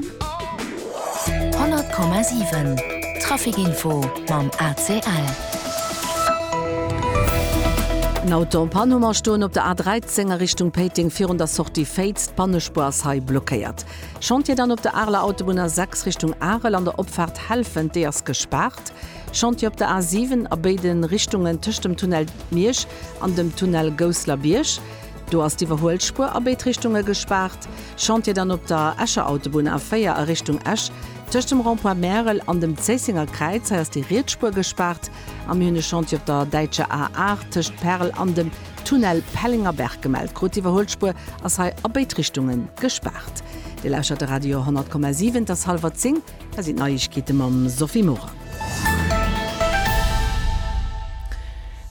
100,7 Trafic Info mam ACL. En Auto en Panne Hummer stoen op der A 13 a Richtung Péiteng virun der Sortie Féiz. D'Pannespur ass hei blockéiert. Chantier dann op der Areler Autobunn A 6 Richtung Arel an der Opfaart Helfent, déi ass gespaart. Chantier op der A 7 a béide Richtungen tëscht dem Tunnel Miersch an dem Tunnel Gousseler Bierg. Do ass d'Iwwerhuelspuer a béid Richtunge gespaart. Chantier dann op der Escher Autobunn A4 a Richtung Esch, tëscht dem Rond-point Märel an dem Zéissenger Kräiz. Hei ass déi riets Spuer gespaart. A mir hunn e Chantier op der däitscher A8 tëscht Perl an dem Tunnel Pellengerberg gemellt krut. D'Iwwerhuelspuer ass hei a béid Richtunge gespaart. Dir lauschert de Radio 100,7. Et ass hallwer zéng. Hei sinn d'Neiegkeete mam Sophie Morang.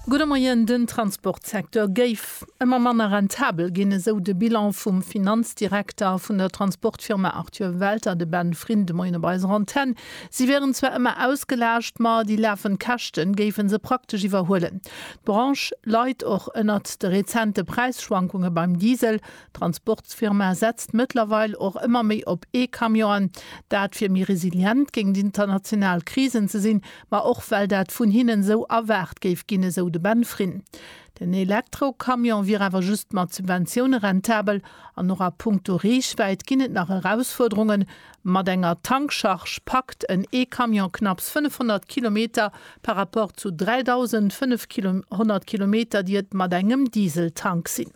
Gudde Moien, Den Transportsecteur géif Betrib ëmmer manner rentabel ginn, esou de Bilan vum Finanzdirekter vun der Transportfirma Arthur Welter, de Ben Fryn, de Moien op eiser Antenn. Si wieren zwar ëmmer ausgelaascht, ma déi lafend Käschten géife se praktesch iwwerhuelen. D'Branche leit och ënnert de rezente Präisschwankunge beim Diesel. D'Transportsfirma setzt mëttlerweil och ëmmer méi op E-Camionen. Dat fir méi resilient géingt international Krisen ze sinn, ma och well dat vun hinnen esou erwaart géif ginn, esou de Ben Fryn. Den Elektrocamion wier awer just mat Subventioune rentabel an och a punkto Reechwäit ginn et nach Erausfuerderungen. Mat enger Tankcharge packt en E-Camion knapps 500 Kilometer par rapport zu 3.500 Kilometer, déi et mat engem Dieseltank sinn.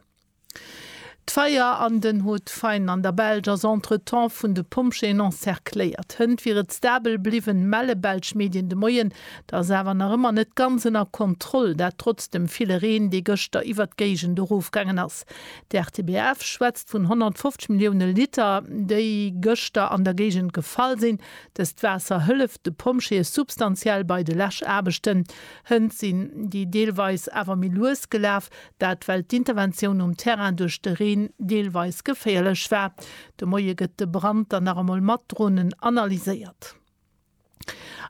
D'Feier an den Hauts-de-Faine an der Belsch ass entretemps vun de Pompjeeën encercléiert. Hënt wier et stabel bliwwen, melle belsch Medien de Moien. Dat ass awer nach ëmmer net ganz ënner Kontroll, dat trotz dem ville Reen, dee gëschter iwwert d'Géigend erofgaangen ass. D'RTBF schwätzt vun 150 Millioune Liter, déi gëschter an der Géigend gefall sinn. Dëst Waasser hëlleft de Pompjeeë substantiell bei de Läschaarbechten. Hënt sinn déi deelweis awer méi lues gelaf, Dat well d'Interventioun um Terrain duerch de Reen deelweis geféierlech war. De Moie gëtt de Brand dann nach emol mat Dronen analyséiert.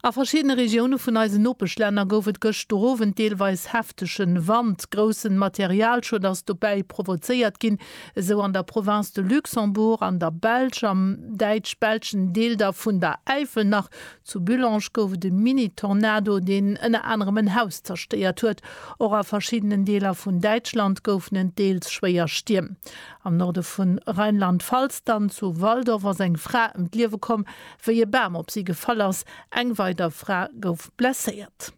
A verschiddene Regioune vun eisen Nopeschlänner gouf et gëschter Owend deelweis heftege Wand. Groussen Materialschued ass dobäi provozéiert ginn, esou an der Province de Luxembourg, an der Belsch, am däitsch-belschen Deel da vun der Äifel nach Zu Bullange gouf et e Mini-Tornado, deen ënner anerem en Haus zerstéiert huet. Och a verschiddenen Deeler vun Däitschland goufen et deels schwéier Stierm. Am Norde vu Rheinland-Pfalz, dann zu Walldorf, ass eng Fra ëm d'Liewe komm, wéi e Bam op si gefall ass. Eng weider Fra gouf blesséiert.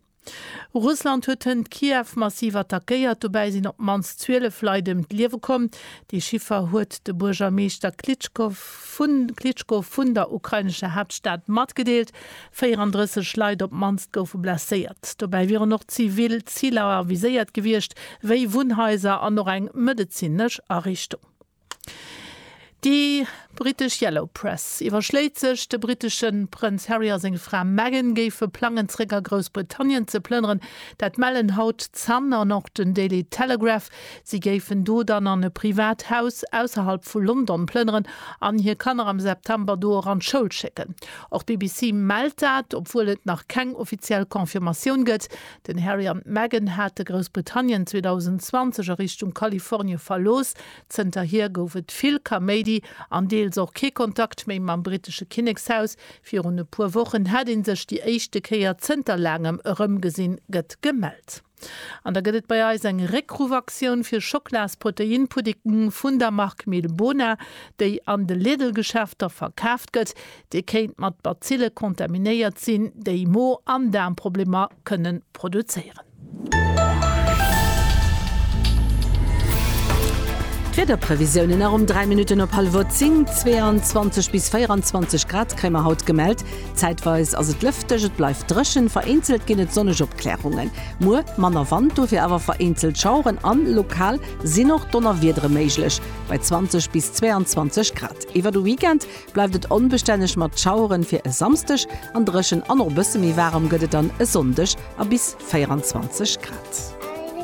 Russland huet hënt Kiew massiv attackéiert, dobäi sinn op d'mannst 12 Leit ëm d'Liewe komm. Dee Chiffer huet de Buergermeeschter Klitschko vun Klitschko vun der ukrainescher Haaptstad matgedeelt. 34 Leit op d'mannst goufe blesséiert. Dobäi wieren och zivil Ziler viséiert gewiescht, wéi Wunnhaiser an och eng medezinesch Ariichtung. Déi brittesch Yellow Press iwwerschléit sech, de brittesche Prënz Harry a seng Fra Meghan géife plangen, zeréck a Groussbritannien ze plënneren. Dat mellen haut d'Sun an och den Daily Telegraph. Si géifen do dann an e privat Haus ausserhalb vu London plënneren an hir Kanner am September do och an d'Schoul schécken. Och d'BBC mellt dat, obwuel et nach keng offiziell Confirmatioun gëtt. Den Harry an d'Meghan hate Groussbritannien 2020 a Richtung Kalifornie verlooss. Zënterhier gouf et vill Kaméidi an deels och kee Kontakt méi mam brittesche Kinnekshaus. Virun e puer Wochen hätt ee sech déi éischte Kéier zënter laangem erëmgesinn, gëtt gemellt. An da gëtt et bei eis eng Réckruffaktioun fir Schocklaas-Proteinpudding vun der Mark Milbona, déi an de Lidl-Geschäfter verkaaft gëtt. Dee kéint mat Bazille contaminéiert sinn, déi Mo an Daarmproblemer kënnen produzéieren. D'Wiederprevisiounen nach um 3 Minutten op hallef uer 10, 22 bis 24 Grad kréie mer haut gemellt. Zäitweis ass et lëfteg, et bleift dréchen, vereenzelt ginn et sonneg Opklärungen. Muer manner Wand, dofir awer vereenzelt Schaueren an lokal sinn och Donnerwiedere méiglech, bei 20 bis 22 Grad. Iwwer de Weekend Bleift et onbestänneg mat Schaueren fir e Samsdeg an dréchen an och e bësse méi waarem gëtt et dann e Sonndeg a bis 24 Grad.